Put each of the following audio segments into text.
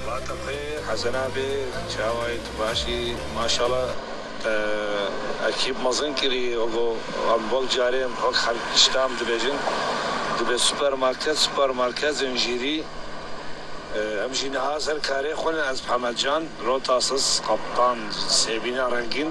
Vatim xê Hesena bê çawa yê tu baş î maşala te ekîb mezin kirî ego em wek carê wek xelk îştam dibêjin dibê supermarket supermarket zincîrî em jî niha ser karê xwe ne ez Hemed Can Rotasız Kaptan Sêbîna Rengîn.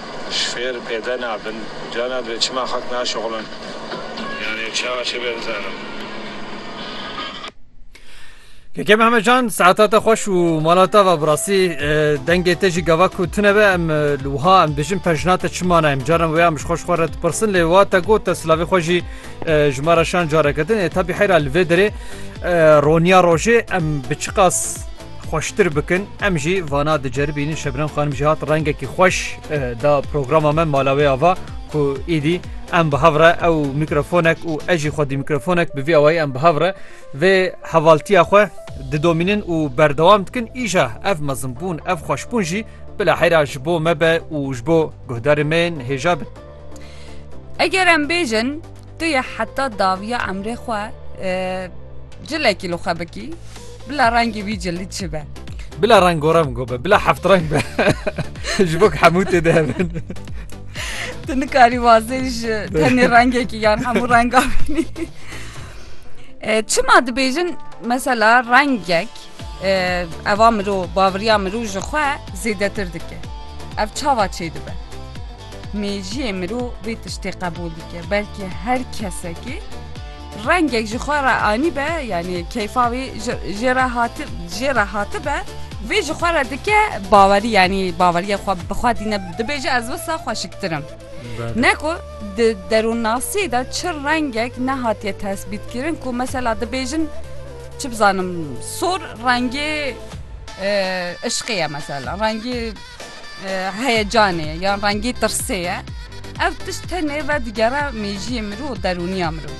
Ji fêr pêde nabin. Carna divê çima xelk naşixulin? Yanî çawa çi bê bizanim? Keke Mehmet Can saeta te xweş û mala te ve bi rastî dengê te jî gava ku tune be em li wiha em dijin pejna te çi mana em caran wê em ji xweş xwe re dipirsin lê wa te got te silavê xwe jî ji me re şan careke din ê tabî heyra li vê derê roniya rojê em bi çiqas xweştir bikin em jî vana diceribînin Şebnem xanim jî hat rengekî xweş da programa me mala wê ava ku îdî em bi hev re ew mîkrofonek û ez jî xwedî mîkrofonek bi vî awayî em bi hev re vê hevaltiya xwe didomînin û berdewam dikin îja ev mezinbûn ev xweşbûn jî bila heyra ji bo me be û ji bo guhdarê me hêja bin. Eger em bêjin Tu yê heta dawiya emrê xwe cilekî li xwe bikî bila rengê wî cilî çi be. Bila rengorengo be, bila heft reng be ji bo hemû tê de hebin. Tu nikarî wazê ji tenê rengekî yan hemû renga bînî. Çima dibêjin mesela rengek eva mirov bavriya mirov ji xwe zêdetir dike. Ev çawa çê dibe? Mejiyê mirov vê tiştê qebûl dike, belkî her kesekî rengek ji xwe re anîbe yanî keyfa wî jê re hati jê re hatibe vê ji xwe re dike bawerî yanî baweriya xwe bi xwe dîne dibêje ez wisa xweşiktir im. Neko di derûnnasiyê de çi rengek nehatiye tesbîtkirin ku mesela dibêjin çi bizanim sor rengê ışqê ye mesela rengê heyecanê yan rengî tirsê ye. Ev tişt tenê vedigerea mêjiyê mirov û derûniya mirov.